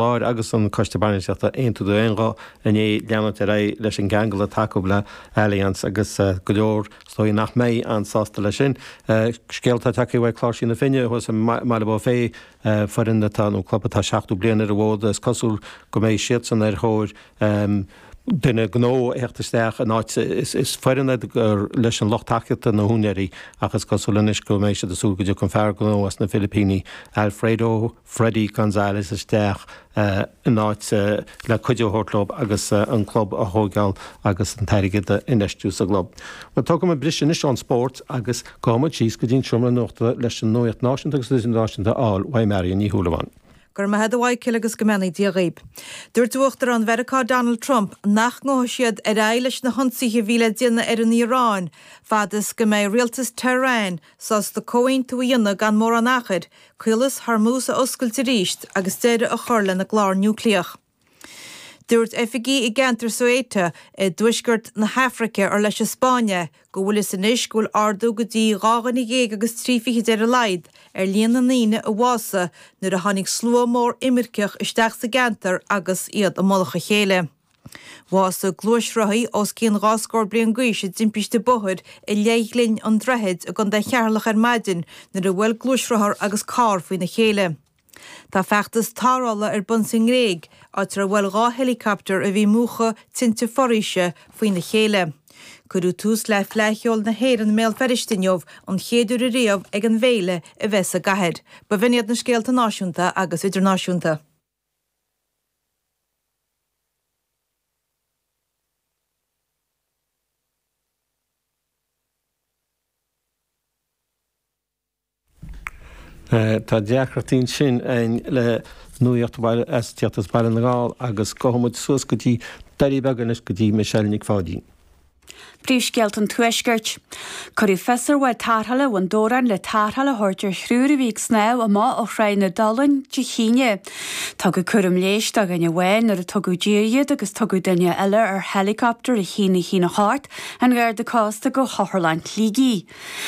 Láir agus an Coiste Bainistíochta aontú d'aon ghuth inné leanúint ar aghaidh leis an gceangal atá acu le Allianz agus go leor is dóigh nach mbeidh an-sásta leis sin. Scéal atá tagtha uaidh Cláirsigh na Finne thuas i mBealach Féich, foireann atá, nó club atá 70 bliain ar an bhfód, is cosúil go mbeidh siadsan ar thóir duine gnó a theacht isteach in áit. Is foireann iad gur leis an lucht tacaíochta na húinéirí ach is cosúil anois go mbeidh siad ag súil go dtiocfaidh an fear gnó as na Filipíní, Alfredo, Freddy Gonzalez isteach in áit le cuidiú a thabhairt dóibh agus an club a thóigeáil agus an t-airgead a infheistiú sa gclub. Bhuel, tógfaidh mé briseadh anois ón spórt agus gabhfaidh muid síos go dtí an seomra nuachta leis an nuacht náisiúnta agus idirnáisiúnta a fháil uaidh Marion Ní Shúilleabháin. Go raibh maith agat a Mhichael agus go mbeannaí Dia dhaoib. Dúirt Uachtarán Mheiriceá Donald Trump nach ngabhfadh siad ar aghaidh leis na hionsaithe a bhí le déanamh ar an Iaráin fad is go mbeidh rialtas Tehran sásta comhaontú a dhéanamh gan mórán achair, Caolas Hormuz a oscailt arís agus deireadh a chur lena gclár núicléach. Dúirt oifigigh i gceantar Ceuta i dtuaisceart na hAfraice ar leis an Spáinn é go bhfuil fhios anois go bhfuil ardú go dtí dhá dhuine dhéag agus trí fichid ar a laghad ar líon na ndaoine a bhásaigh nuair a tháinig slua mór imirceach isteach sa gceantar agus iad i mullach a chéile. Bhásaigh gluaisrothaí os cionn dhá scór bliain d'aois i dtimpiste bóthair i Leithghlinn an Droichid i gContae Cheatharlach ar maidin nuair a bhuail gluaisrothar agus carr faoina chéile. Tá feachtas tarrthála ar bun sa nGréig, áit ar bhuail dhá héileacaptar a bhí ag múchadh tinte foraoise faoina chéile. Cuireadh tús le Fleadh Cheoil na hÉireann i mBéal Feirste inniu, an chéad uair ariamh ag an bhféile a bheith sa gcathair. B'in iad na scéalta náisiúnta agus idirnáisiúnta. Tá deacrachtaí ansin againn le nuaíocht a bhí le tíocht as Baile na nGall agus gabhfaidh muid suas go dtí Doirí Beaga anois go dtí Michelle Nic Pháidín. Príomhscéalta an Tuaiscirt. Cuireadh fios ar bhád tarrthála Bhun Dobhráin le tarrtháil a thabhairt ar thriúr a bhí ag snámh amach ó Thráigh na Dulainn Dé hAoine. Tugadh cúram leighis do dhuine amháin nuair a tugadh i dtír iad agus tugadh duine eile ar héileacaptar a haon a haon a hocht an Gharda Cósta go hOtharlann Shligigh.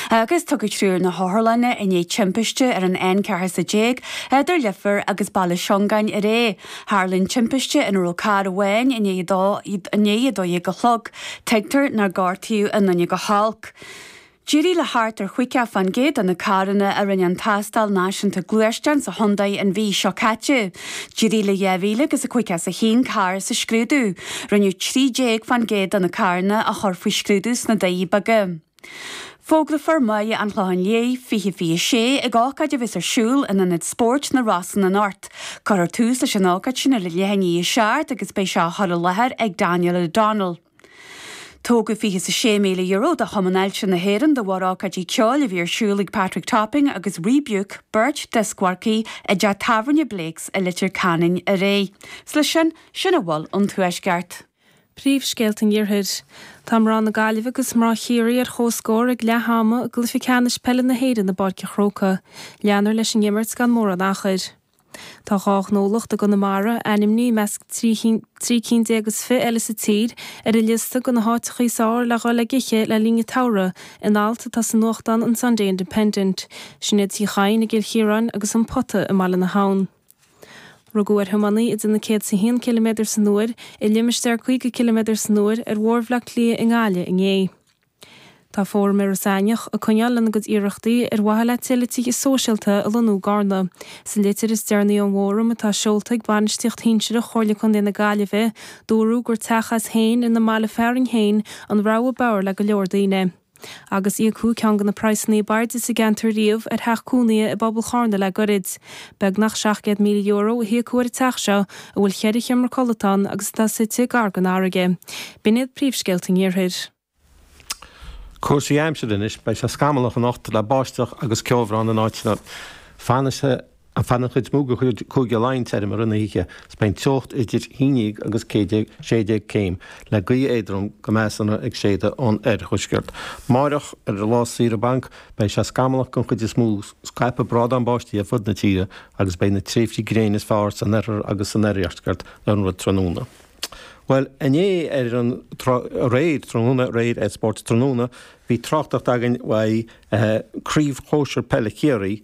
agus tugadh triúr na hotharlainne i ndiaidh timpiste ar an N14, idir Leifear agus Baile Suingean aréir. Tharla an timpiste ina raibh carr amháin i ndiaidh dó i ndiaidh a dó dhéag a chlog. Tuigtear nár gortaíodh aon duine go holc. D'éirigh le thart ar chaoga faoin gcéad de na carranna a rinne an tástáil náisiúnta gluaisteán sa chontae an mhí seo caite. D'éirigh le 2051 carr sa scrúdú. Rinneadh 13% de na carranna a chur faoi scrúdú sna Doirí Beaga. Fógrófar Mary an Chlocháin Léith 2026 ag ócáid a bheas ar siúl in Ionad Spóirt na Rosann anocht. Cuirfear tús leis an ócáid sin ar a leath i ndiaidh a seacht agus beidh sé á chur i láthair ag Daniel O'Donnell. Tógadh €26,000 do Chumann Ailse na hÉireann de bharr ócáidí ceoil a bhí ar siúl ag Patrick Topping agus Rebuke, beirt dioscmharcaí, i dteach tábhairne Blake's i Leitir Ceanainn aréir. Is leis sin sin a bhfuil ón Tuaisceart. Príomhscéalta an Iarthair. Tá mná na Gaillimhe agus mná Chiarraí ar chomhscór ag leath ama i gcluiche ceannais peile na hÉireann i bPáirc an Chrócaigh. Leanfar leis an imirt gan mórán achair. Tá dhá ghnólacht i gConamara, ainmnithe i measc trí cinn déag is fiche eile sa tír, ar an liosta de na háiteacha is fearr le dhul ag ithe le linn an tsamhraidh, in alt atá sa nuachtán an Sunday Independent. Sin iad Tigh Chadhain i gCill Chiaráin agus An Pota i mBaile na hAbhann. Rugadh ar thiománaí ag déanamh 101 km san uair i limistéar 50 km san uair ar Bhóthar Bhleá Cliath i nGaillimh inné. Tá Fóram Iorras Aithneach ag coinneáil lena gcuid iarrachtaí ar mhaithe le tuilleadh tithe sóisialta a lonnú i gCarna. Sa litir is deireanaí ón bhFóram, atá seolta ag bainistíocht shinsearach Chomhairle Contae na Gaillimhe, dúradh gur teach as féin ina mbaile fearainn féin an rogha b'fhearr le go leor daoine. agus íocadh ceann de na praghsanna ab airde sa gceantar riamh ar theach cónaithe i bpobal Charna le gairid. Beagnach €700,000 a híocadh ar an teach seo, a bhfuil cheithre sheomra codlata ann agus atá suite gar don fharraige. B'in iad príomhscéalta an Iarthair. Cúrsaí aimsire anois. Beidh sé scamallach anocht le báisteach agus ceobhrán in áiteanna. Fanfaidh sé. Ar feadh an chuid is mó de Chúige Laighean tirim i rith na hoíche, is beidh an teocht idir 11 agus 16 céim, le gaoth éadrom go measartha ag séideadh ón oirthuaisceart. Amárach, ar lá saoire bainc, beidh sé scamallach den chuid is mó, scaipfidh brádán báistí ar fud na tíre agus beidh na tréimhsí gréine is fearr san oirthear agus san oirdheisceart le linn an tráthnóna. Bhuel, inné ar an, aréir, tráthnóna, aréir ar Spórt Tráthnóna, bhí tráchtaireacht againn uaidh Craobh Shóisir Peile Chiarraí,